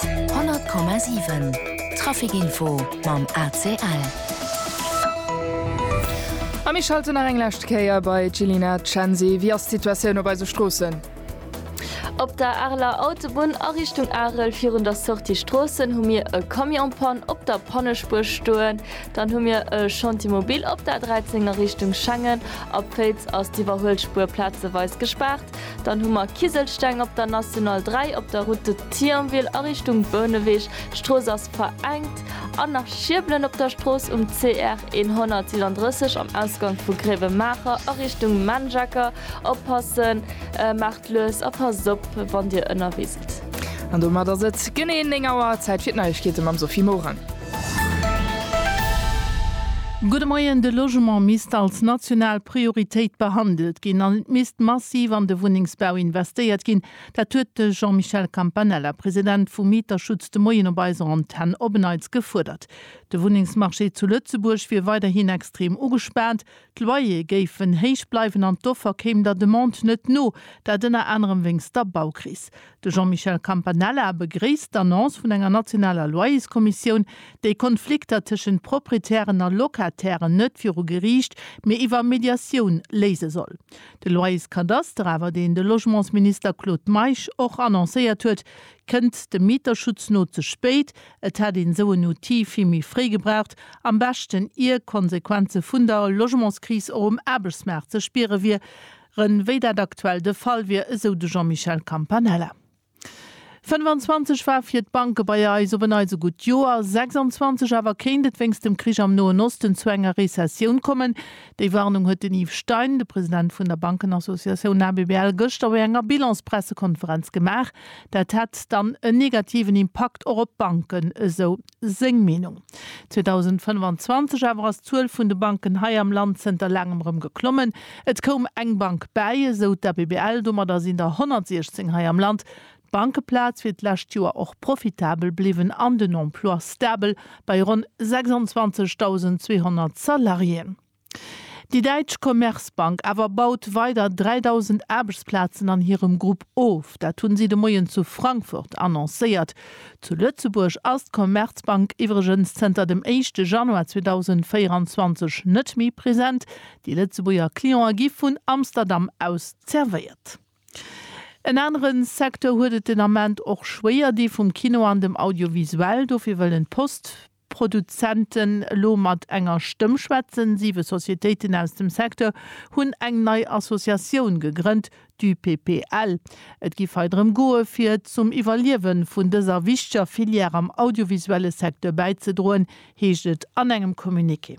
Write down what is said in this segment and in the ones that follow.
100,7 Traficinfo mam ACL. A mir schalten nach eng lescht Kéier bei d'Jillina Cenzi. Wéi ass d'Situatioun op eise Stroossen? Op der Areler Autobunn a Richtung Arel virun der Sortie Stroossen hu mir e Camion-Panne op der Pannespuer stoen. Dann hu mir e Chantier mobile op der A13 a Richtung Schengen. Op Féiz ass d'Iwwerhuelspuer plazeweis gespaart. Dann hu mer Kiselsteng op der National 3, op der Route de Thionville a Richtung Bouneweg, d'Strooss ass verengt, an nach Schierbelen op der Strooss um CR 137 am Ausgank vu Gréiwemaacher a Richtung Menjacker. Oppassen, maacht lues a passt op wann Dir ënnerwee sidd. An domat ass et genee 9 Auer, Zäit fir d'Neiegkeete mam Sophie Morang. Gudde Moien, De Logement misst als national Prioritéit behandelt ginn an et misst massiv an de Wunnengsbau investéiert ginn. Dat huet de Jean-Michel Campanella, President vum Mieterschutz, de Moien op eiser Antenn op en Neits gefuerdert. De Wunnengsmarché zu Lëtzebuerg wier weiderhin extrem ugespaant, D'Loyere géifen héich bleiwen an d'Offer kéim der Demande net no, dat ënner anerem wéinst der Baukris. De Jean-Michel Campanella begréisst d'Annonce vun enger nationaler Loyerskommissioun, déi Konflikter tëschent Proprietären a Locatairen net viru Geriicht, mee iwwer Mediatioun léise soll. De Loyerskadaster awer, deen de Logementsminister Claude Meisch och annoncéiert huet, kënnt dem Mieterschutz no ze spéit, Et hätt een esou en Outil vill méi fréi gebraucht, am beschten ier d'Konsequenze vun der Logementskris och um Aarbechtsmaart ze spiere wier ren, wéi dat aktuell de Fall wier, esou de Jean-Michel Campanella. 25 war fir d'Banke bei eis op en eise gutt Joer, 26 awer kéint et wéinst dem Krich am Noen Osten zu enger Rezessioun kommen. Déi Warnung huet den Yves Stein, de President vun der Bankenassociatioun ABBL, gëschter bei enger Bilanspressekonferenz gemaach. Dat hätt dann en negativen Impakt och op d'Banken, esou seng Meenung. 2025 awer ass d'Zuel vun de Banken hei am Land zënter laangem rëm geklommen. Et koum eng Bank bäi, esou d'ABBL. Domadder sinn der 116 hei am Land. D'Bankeplaz wier d'lescht Joer och profitabel bliwwen an den Emploi stabel bei ronn 26.200 Salariéen. Déi däitsch Commerzbank awer baut weider 3.000 Aarbechtsplazen an hirem Grupp of. Dat hu si de Moien zu Frankfurt annoncéiert. Zu Lëtzebuerg ass d'Commerzbank iwwregens zënter dem éischte Januar 2024 net méi present. Déi Lëtzebuerger Cliente gi vun Amsterdam aus zervéiert. En anere Secteur huet et den Ament och schwéier, dee vum Kino an dem Audiovisuell. Dofir wëllen d'Post. Produzenten elo mat enger Stëmm schwätzen. Siwe Societéiten aus dem Secteur hunn eng nei Associatioun gegrënnt, d'UPPL. Et giff hei drëm goe fir zum Iwwerliewen vun dëser wichteger Filière am audiovisuelle Secteur bäizedroen, heescht et an engem Communiqué.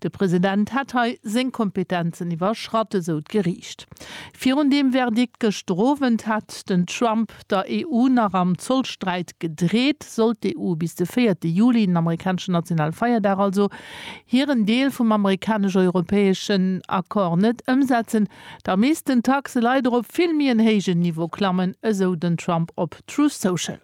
De President hätt hei seng Kompetenzen iwwerschratt, esou d'Geriicht. Virun deem Verdikt gëschter Owend hätt den Trump der EU nach am Zollsträit gedreet. Sollt d'EU bis de véierte Juli, den amerikaneschen nationale Feierdag also, hiren Deel vum amerikanesch-europäeschen Accord net ëmsetzen, da missten d'Taxe leider op vill méi en héijen Niveau klammen, esou den Trump op Truth Social.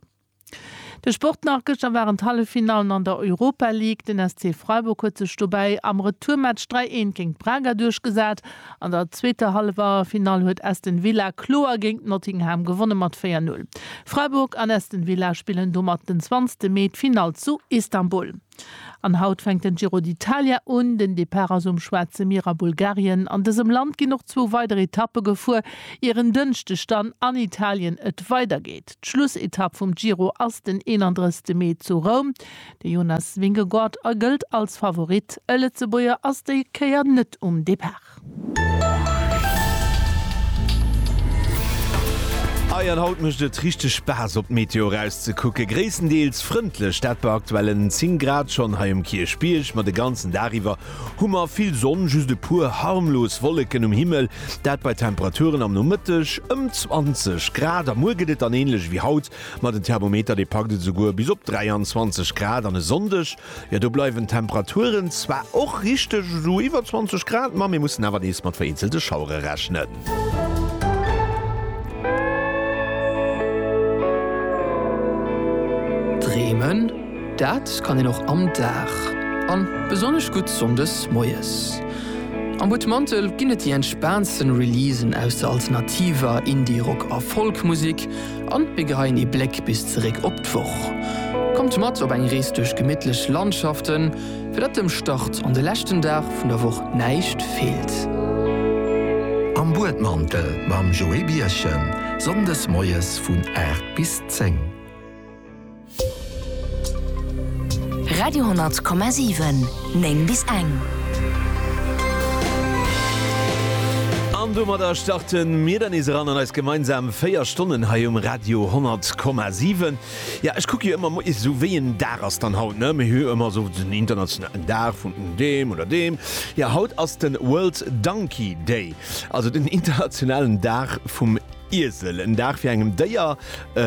De Sport nach, Gëschter waren d'Halleffinallen an der Europa League. Den SC Freiburg huet sech dobäi am Retourmatch 3, 1 géint Braga duerchgesat. An der zweeter Halleffinall huet Aston Villa kloer géint Nottingham gewonnen, mat 4, 0. Freiburg an Aston Villa spillen domat den 20 Mee d'Finall zu Istanbul. An haut fänkt den Giro d'Italia un. Den Depart ass um Schwaarze Mier a Bulgarien. An dësem Land ginn och zwou weider Etappe gefuer, ier en Dënschdeg dann an Italien et weidergeet. D'Schlussetapp vum Giro ass den 31 Mee zu Roum. De Jonas Vingegaard a gëllt als Favorit. E Lëtzebuerger ass déi Kéier net um Depart. Ei, an haut mécht et richteg Spaass op d'Meteo erauszekucken. Gréisstendeels frëndlech, dat bei aktuellen 10 Grad schonn hei um Kierchbierg. Ma de ganzen Dag iwwer hu mer vill Sonn, just e puer harmlos Wolleken um Himmel, dat bei Temperaturen am Nomëtteg ëm 20 Grad. A muer gëtt et dann änlech ewéi haut, ma den Thermometer dee packt et esouguer bis op 23 Grad an e Sonndeg Jo, do bleiwen d'Temperaturen zwar och richteg esou iwwer 20 Grad, ma mir mussen awer nees mat vereenzelte Schauere rechnen. Dreemen, dat kann een och am Dag, a besonnesch gutt sonndes moies. Am Butmantel ginn et déi entspaantste Releasen aus der alternativer, Indie-, Rock a Folk-Musek. An mir geheien ee Bléck bis zeréck op d'Woch. Kommt mat op eng Rees duerch gemittlech Landschaften, fir datt dem Start an de leschten Dag vun der Woch näischt feelt. Am Buedmantel mam Joé Birchen, Sonndes moies vun 8 bis 10. Radio,7 9 bis eng. An domadder starte mir dann nees eran an eis gemeinsam 4 Stonnen hei um Radio 10,7. Ja ech kucke jo ëmmer mo is sou wéi en Dag ass dann haut ne méi hu ëmmer sou den internationalen Dag vun deem oder deem. Ja haut ass den World Donkey Day, also den internationalen Dag vum Iesel. En Dag fir engem Déier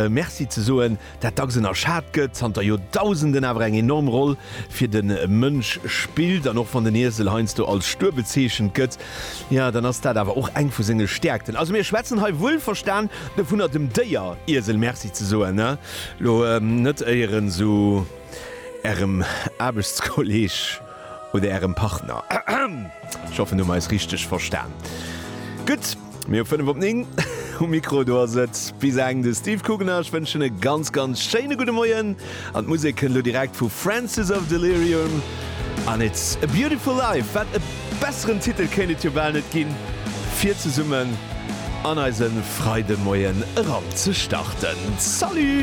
Merci ze soen. dat dacks ënnerschat gëtt, zanter Joerdausenden awer eng enorm Roll fir de Mënsch spillt. An och wann den Iesel heiansdo als stuer bezeechent gëtt, jo, dann ass dat awer och eng vu senge Stäerkten. Also mir schwätzen hei wuelverstan dovunner, dem Déier Iesel Merci ze soen, elo net éier en esou Ärem Aarbechtskolleeg. oder Ärem Partner. Ech hoffen, du hues eis richteg verstan. Gutt, mir hu 5 op 9. Um Mikro do ass et, wéi se engen, de Steve Kugener. Ech wënschen e ganz, ganz schéine gudde Moien. An d'Musek kënnt elo direkt vu Francis of Delirium an It's a Beautiful Life. Wat e besseren Titel kéint et jo bal net ginn, fir zesummen an eise Freidemoien eran ze starten. Salut!